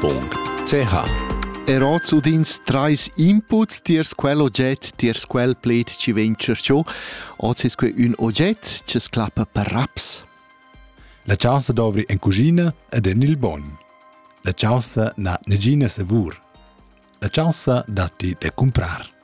.ch Era zu dins trais inputs tiers quel ogget, tiers quel pled ci vegn cerciò, oz es que ün ogget che sclappa per raps. La chausa dovri en cucina ed en il bogn. La chausa n'ha negina savur. La chausa datti da cumprar.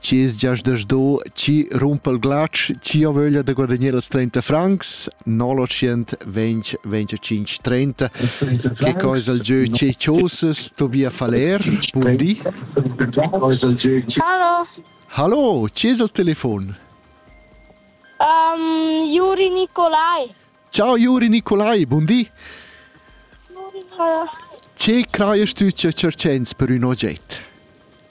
Chi's giaschdasch do chi rumpa il glatsch, chi ha vöglia da guadagnar els 30 francs, 925-30, che cosa il gieu che chosas Tobia Faller, buon di. Hallo. Hallo, chi es il telefon? Um, Juri Nicolai. Ciao Juri Nicolai, buon di. Che crajast tu che cercens per un oggetto?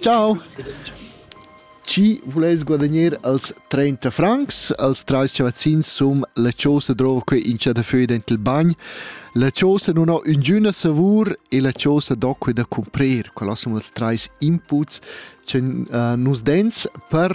Ciao! Chi vuless guadagner als 30 francs? Als trais chavazzins sun la chosa drova que in cha da föi dent il bagn. La chosa nun ho üngüna savur e la chosa do que da cumprer. Quels sun ils trais inputs cha uh, nus dens per